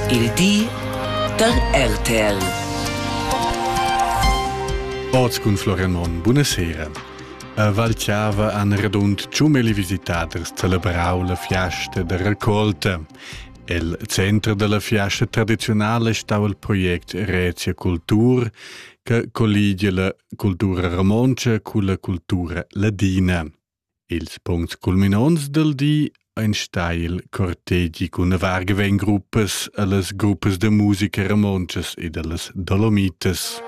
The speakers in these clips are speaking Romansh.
Il di da RTL. Oz cun Florian Monn, buonasera. A Valchava han radund tschumeli visitaders celebrau la fiasta da raccolta. El center dalla fiasta tradizionala stau il project Rezia Cultur, che colligia la cultura romontscha culla cultura ladina. Ils puncts culminonts dal di ein stai il cortegi cun vargevengruppas ellas gruppas da musica romontschas ed ellas Dolomitas.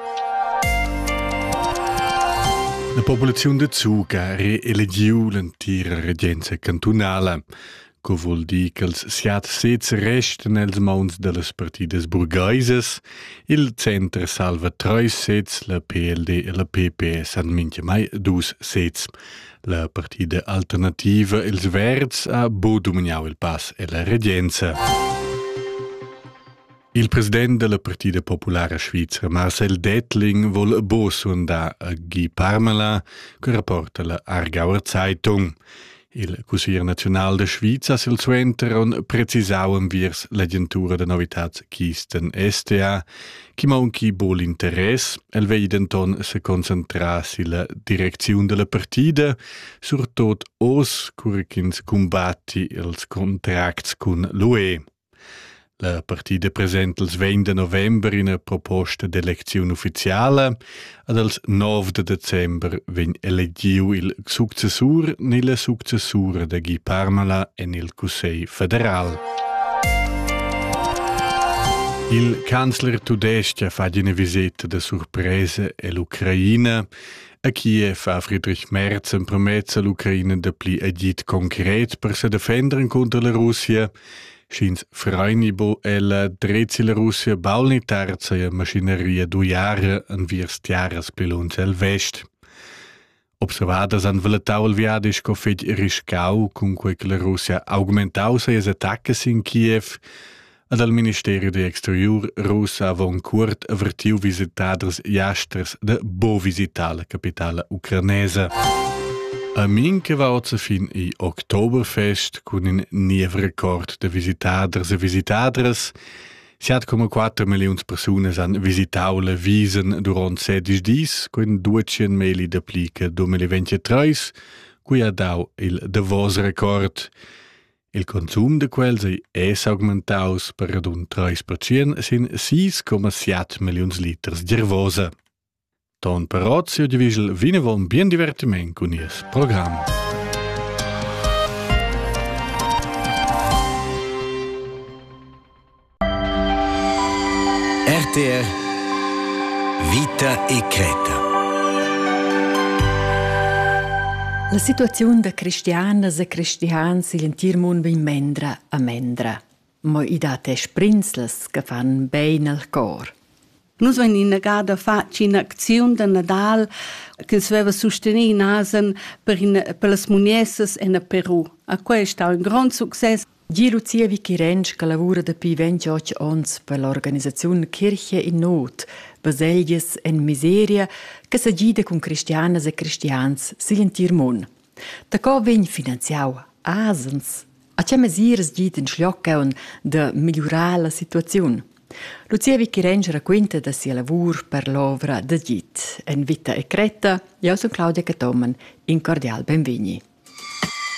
La populaziun da Zuga ha reelegiu l'entira regenza cantunala. co vul dir ch'els siat sez restan els mauns dellas partidas burgaisas. Il center salva treis sezs, la PLD e la PPS han minchamai dus sezs. La partida alternativa Els Verds ha bo domignau il pass e la regenza. Il president della Partida Populara Svizra, Marcel Dettling, vol bo sondar a Guy Parmala, che rapporta la Aargauer Zeitung. Il cussier nazional de Sviza silsuenter on precisau enviers l'agentura de novitats Kisten STA, chi maunchi bo l'interess, el vei denton se concentrar silla direcziun della partida, surtot os cur ch'ins combatti els contracts cun l'UE. La partida presenta els vegn da november ina proposta d'elecziun ufficiala ed els nov da december vegn elegiu il successur ni la successura da Guy Parnola en il Cussegl federal. Il canzler tudestg fa ina visita da surpresa all'Ucraina. A Kiev ha Friedrich Merz empromess all'Ucraina da pli agit concret per se defendere contro la Russia – Sch'ins fraini bo ella drezi la Russia baul ni terza ia maschineria d'uiara enviers tiaras pli lunsch el vest. Observadas han valetau il viadi sco fetg riscau, cunquei che la Russia augmentau sias attaccas in Kiev, ed al Ministeri d'exteriur russ avon cuort avertiu visitaders jasters de bo visitar la capitala ucranesa. A min che va oz fin i Oktoberfest cun in niev record da visitaders e visitadras. Siat come 4 milliuns persunas han visitau le Wiesen durant 16 dis, con 200 meli da plica 2023, cui ha dau il davos record. Il consum de quels ei es augmentaus per radun 3% sin 6,7 milliuns liters d'ervosa. Ton però siu divigl vinavon bien divertiment cun nies program. RTR Vita e Creta La situaziun da cristianas e cristians igl entir mund vegn mendra a mendra. Mo i dat e sbrinzlas che fan bein al cor. Nus vein innegada fatg in'acziun da Nadal ch'ins veva sustenì in asen per, in, per las muniessas en Peru. A quei è stau in grond success. Gie Lucia Vichirenc che lavura dapi 28 onns per l'organisaziun Kirche in Not, baselgias en miseria, che sa gida cun cristianas e cristians sigl entir mund. Daco vegn finanziau asens? A tgei mesiras git in schlioccaun da migliurar la situaziun? Lucia Vicherenc raquinta da sia lavur per l'ovra da git. En vita e cretta, jeu sun Claudia Cathomen. In cordial benvegni.